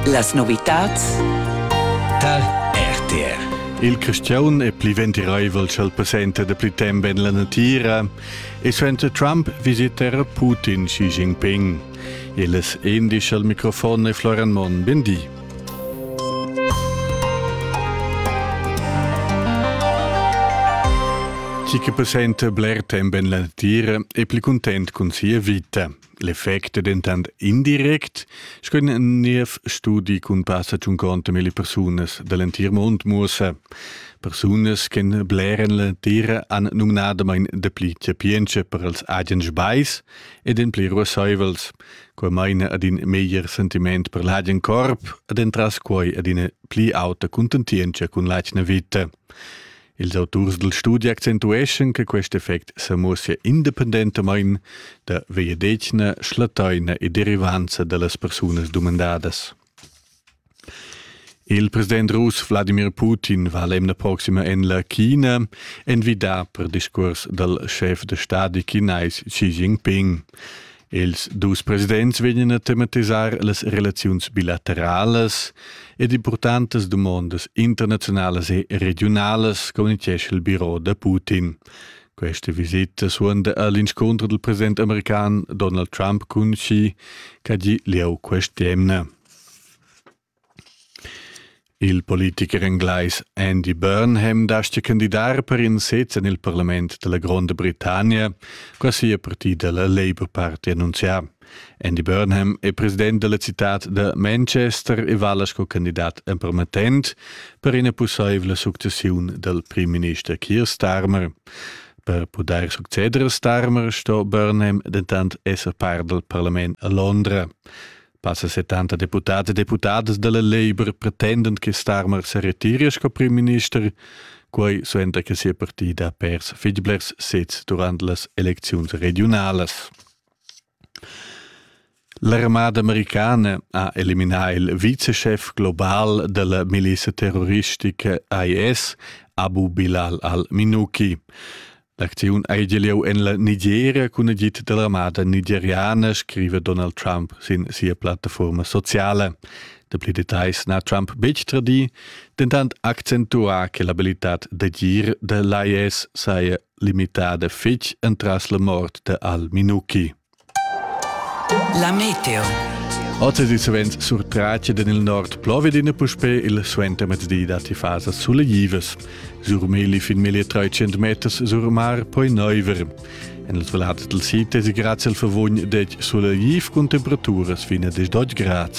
Las novitads tar RTR. Il cristian è pli ventiraivel ch'el passenta da pli temp en la natira e suenter Trump visitera Putin Xi Jinping. Illes indica al microfon e Florian Monn. Ben di. Chi che passenta bler temp en la natira è pli content cun sia vita. L'effect è dentant indirect, sco in niev studi cun passa tschunconta milli persunas da l'entir mund muossa. Persunas che bleren l'entira han numnadamain dapli chapientscha per els agens bais ed en pli ruassaivels. Quai maina ad in meglier sentiment per l'agen corp ed entras quai ad ina pli auta cuntentientscha cun l'atgna vita. Ils auturs dal studi accentueschan che quest effect sa muossia independentamain da vegliadetgna, schlattaina e derivanza da las persunas dumandadas. Il president russ Wladimir Putin va l'emna proxima en la China envidà per discurs dal schef da stadi chinais Xi Jinping. Ils dus presidents vegnan a tematisar las relaziuns bilateralas ed importantas dumondas internaziunalas e regiunalas, communitgescha il biro da Putin. Questa visita suonda all'inscontro del president american Donald Trump cun Xi, che ha gì lieu quest'emna. Il politicher englais Andy Burnham dastga candidar per in sez en il parlament da la Gronda Britannia, quai ha sia partida la Labour Party annunzià. Andy Burnham è president da la citad da Manchester e vala sco candidat empermettent per ina pussaivla successiun dal primminister Keir Starmer. Per pudair succeder a Starmer sto Burnham dentant esser part dal parlament a Londra. Passa 70 deputads e deputadas dalla Labour pretendend che Starmer se retiri sco primminister, quei suenter che sia partida ha pers fitg blers sez durant las elecziuns regionalas. L'armada americana ha eliminà il viceschef global della miliza terroristica IS, Abu Bilal al-Minuki. L'acziun ei gia lieu en la Nigeria cun agid dall'armada nigeriana, scrive Donald Trump sin sia plattaforma sociala. Dapli details n'ha Trump betg tradì, dentant accentuà che l'abilitad d'agir da l'IS saja limitada fitg entras la mort da al-Minuki. La meteo. Oz è savens surtratg en il nord Plovedina puspè il suentermezzdi datti fasas suleglivas. Sur Meli fin meglio 300 meters sur mar poi neuver. En il valats del sid è grazie al favogn dec sulegliv con temperaturas fino a 12 gradi.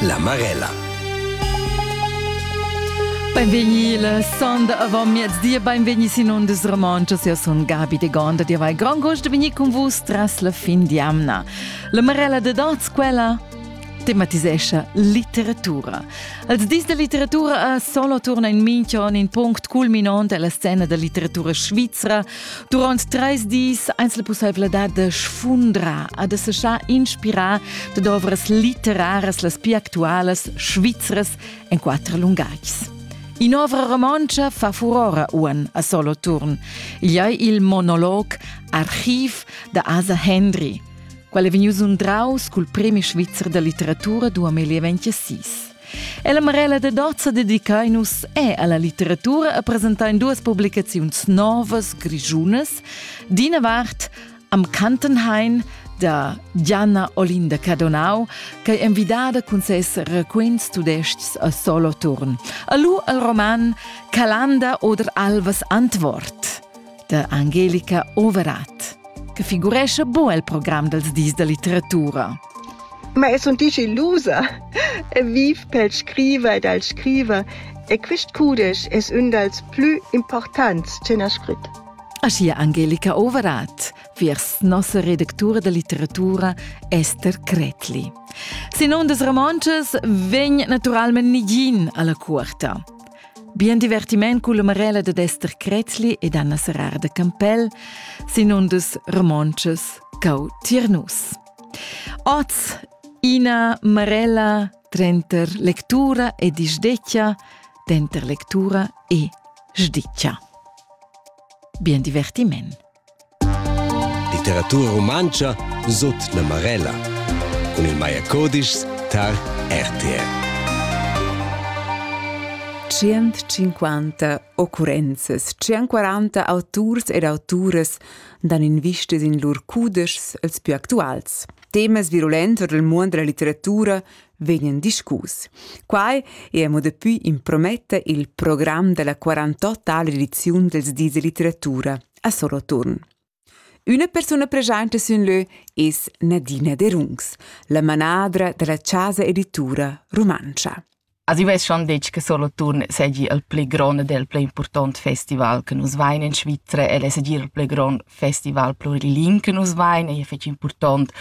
La Marella. Benvegni la sonda avamiezdi e benvegni sin ondas romanchas. Eu sun Gabi de Gonda, dir vai grand gost de venir con vus tras la fin di amna. La Marella de Danz, quella tematisescha litteratura. Als dis da litteratura a solo turna in minchion in punct culminant alla scena da litteratura svizra Durant treis dis eins la pusseivladad de sfundrar a de seschar inspirar de ovras literaras las più actualas svizras en quattro lungais. In'ovra romontscha fa furora uan a solo turn. Igl ei il monolog Archiv da Asa Hendry, qual è vegnius undraus cul premi svizzer da litteratura 2026. E la Marella de Dozza dedicain nus è alla litteratura a presentain duas publicaziuns novas grigiunas. D'ina vart am Kantenhain da Gianna Olinda Cadonau, che è invidada cun ses raquints tudescs a Soloturn. Alu al roman Calanda oder Alvas Antwort. da Angelica Overath, che figurescha bo el program dals dis da litteratura. Ma es un dici lusa e viv pel scriver ed al scriver e quist cudesch es ün dals plü importants che n'ha scrit. Aschia Angelica Overath, viers nossa redactura da litteratura Esther Kretli. Sin ondas romontschas vegn naturalmente nigin alla cuorta. Bien divertiment culla Marella dad Ester Krätzli ed Anna Serrar de Campell sin un dus romontschas cau tiernus. Oz ina Marella trenter lectura e disdeccia, denter lectura e sdiccia. Bien divertiment! Literatura rumantscha sut la Marella cun il Maier Codischs tar RTL. 150 occurrenzas, 140 auturs ed auturas dan invistas in lur cudeschs els più actuals. Temas virulents ord il muond della litteratura vegnan discus. Quai è mo dapi imprometta il program della 48 ediziun dels dis de litteratura a Soloturn. Una persona presente sin leu es Nadina De Rungs, la manadra della Casa Editura Romancia. Asi vess schon detg che Soloturn segi il pli grond del pli important festival che nus vain in Svizzera e es il pli grond festival pluriling che nus vein ei fetg impurtont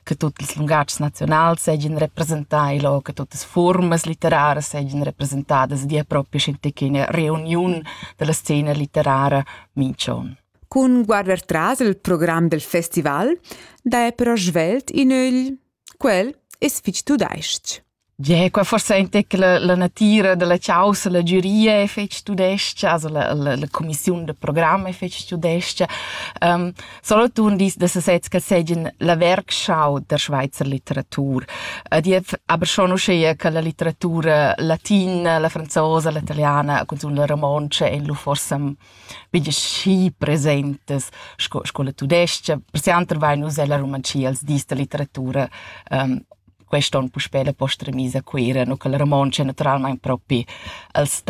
che tutti ils lungatgs nazionals seigien representai lo, che tutte formas literarie seigien representadas via propria scientifica reuniun della scena literaria mincion. Cun guarder tras il programm del festival, da è però svelt in ögl. Quel es fich tudais-ch. Gie, qua forsa in tec la, la natira dalla caussa, la giuria e fetg tudescha, also la, la, la commissiun de programm e fetg tudescha. Um, Solothurn dis da sesez che seggien la werkschau der Schweizer Literatur. Uh, die aber schon uschea che la literatura latina, la franzosa, la italiana, cunzun la romontsch ein lu forsa bige schi presentes sco, sco la tudescha. Per se anter vai nus ella romancia als dis da literatura um, quest on puspè la posta remisa a Cuira, no che la Romontsch è naturalmaing propi al sta.